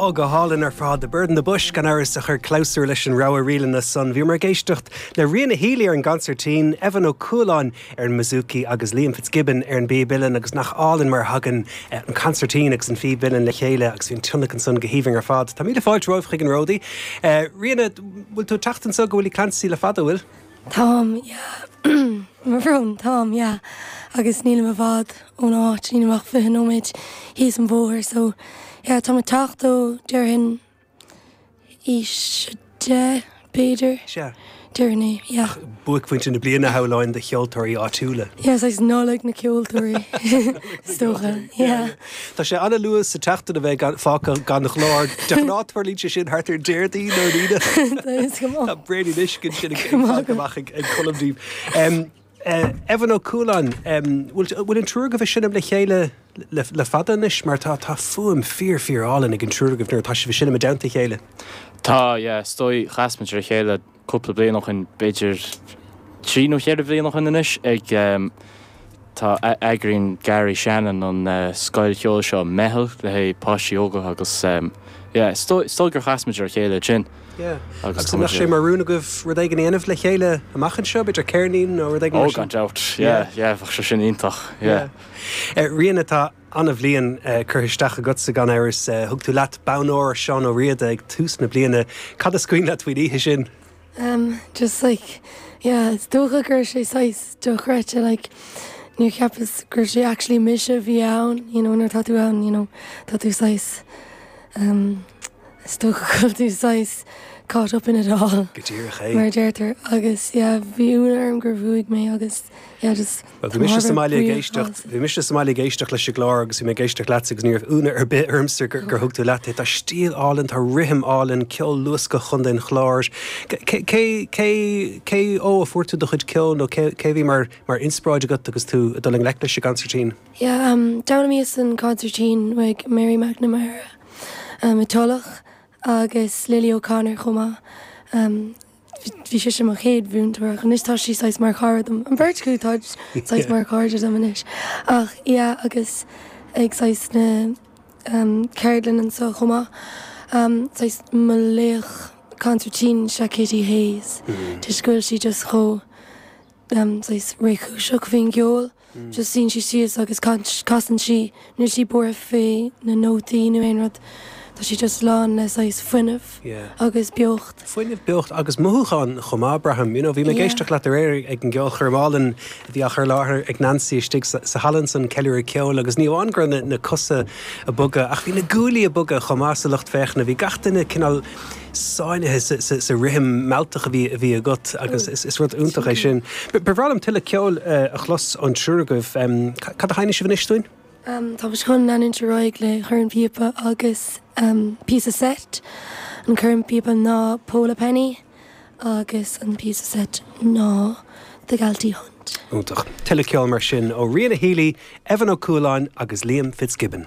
Á, go hálainn ar fad. The Bird in the Bush, gan amhras, a chuir clabhsúr leis an rogha ríleanna san. Bhíomar ag éisteacht le Ríona Healy ar an gconsairtín, Evan Ó Cualáin ar an mbouzouki agus Liam Fitzgibbon ar an bpíb uilleann agus nach álainn mar a thagann an consairtín agus an phíb uilleann le chéile agus bhí an tionlacan san go haoibhinn ar fad. Tá míle fáilte romhaibh chuig an Ródaí. Ríona, bhfuil tú ag teacht anseo go Willie Clancy le fada, bhfuil? Táim, yeah. Mo bhrón, táim, yeah. Agus nílim i bhfad ón áit, nílim ach fiche nóiméad thíos an bhóthair, so yeah, táim ag teacht ó déarfainn aois a deich, b'fhéidir. Sea. Déarfainn é, yeah. Buaicphointe na bliana shamhláinn do cheoltóirí áitiúla. Yeah, is Nollaig na ceoltóirí, is dócha, yeah. Tá sé an-luath sa tseachtain a bheith fágtha gan ghlór de ghnáth tarlaíonn sé sin thart ar Déardaoin nó Aoine. Tá bréan anois go sin ag fáil amach ag Colm daoibh. Evan Ó Cualáin, bhfuil an triúr agaibh ag seinm le chéile le fada anois mar tá tá fuaim fíor fíor álainn ag an triúr agaibh nuair atá sibh ag seinm i dteannta a chéile? Tá, yeah, is dóigh. Chas muid ar a chéile. cúpla bliain ó shin, b'fhéidir trí nó cheithre bliain ó shin anois, ag, tá, eagraíonn Garry Shannon an scoil cheoil seo, Meitheal, le haghaidh páistí óga agus, yeah, is dóigh, is dóigh gur chas muid ar a chéile ansin Yeah. agus an mbeadh sé mar rún agaibh rud éigin a dhéanamh le chéile amach anseo, b'fhéidir ceirnín nó rud éigin mar oh, sin? gan dabht, Yeah. yeah, yeah, bheadh sé sin iontach, yeah. Yeah. Eh, Ríona, tá. Ana-bhliain curtha isteach agatsa gan amhras. Thug tú leat bonn óir Seán Ó Riada ag tús na bliana. Cad is cuimhin leat faoin oíche sin? Em, just like, yeah, is dócha go raibh sé saghas dochreidte, like, níor cheapas go raibh sé actually mise a bhí ann, you know, nuair atá tú ann, you know, tá tú saghas, em, is dócha go bhfuil tú saghas caught up in it all. Go díreach é. Mar a deirtear agus, yeah, bhí ionadh orm gur bhuaigh mé agus, yeah, just. Bhí mise sa mbaile ag éisteacht, bhí mise sa mbaile ag éisteacht leis an gclár agus bhí mé ag éisteacht leatsa agus ní raibh ionadh ar bith ormsa gur gur thug tú leat é. Tá stíl álainn, tá rithim álainn, ceol luascach, chun teann cláir. Cé, cé, cé, cé ó a fuair tú do chuid ceoil nó cé, cé a bhí mar, mar inspioráid agat agus tú ag dul i ngleic leis an gconsairtín? Yeah, um, d'fhoghlaimíos an consairtín ag Mary McNamara, um, i dTulach, agus Lily O'Connor chomh maith, um, Bhí sise mo chéad mhúinteoir ach anois tá sí saghas mar chara dom. An bheirt acu, táid saghas mar chairde dom anois. Ach yeah agus ag saghas na em ceardlann anseo chomh maith. Em saghas mo laoch consairtín is ea Kitty Hayes. Toisc go bhfuil sí just chomh saghas réchúiseach faoin gceol. Just suíonn sí síos agus casann sí. Níl sí buartha faoi na nótaí nó aon rud. Tá sí just lán le saghas fuinneamh agus beocht. Fuinneamh, beocht agus mothúcháin chomh maith, braithim. You know, bhí mé ag éisteacht leat aréir ag an gceolchoirm álainn a bhí á chur i láthair ag Nancy istigh sa halla ansan, Ceiliúradh Ceoil, agus ní amháin go raibh na cosa a' bogadh ach bhí na guaillí a' bogadh chomh maith sa lucht féachana. Bhí gach duine cineál. sáinnithe sa rithim mealltach a bhí agat agus is rud iontach é sin. Ba bhreá liom tuilleadh ceoil a chlos ón triúr agaibh. Cad a sheinnfidh sibh anois dúinn? Tá muid chun leanúint ar aghaidh le Corn Píopa agus píosa seit. An corn píopa ná Pole a Penny agus an píosa seit ná The Galtee Hunt. Iontach. Tuilleadh ceoil mar sin ó Ríona Healy, Evan Ó Cualáin agus Liam Fitzgibbon.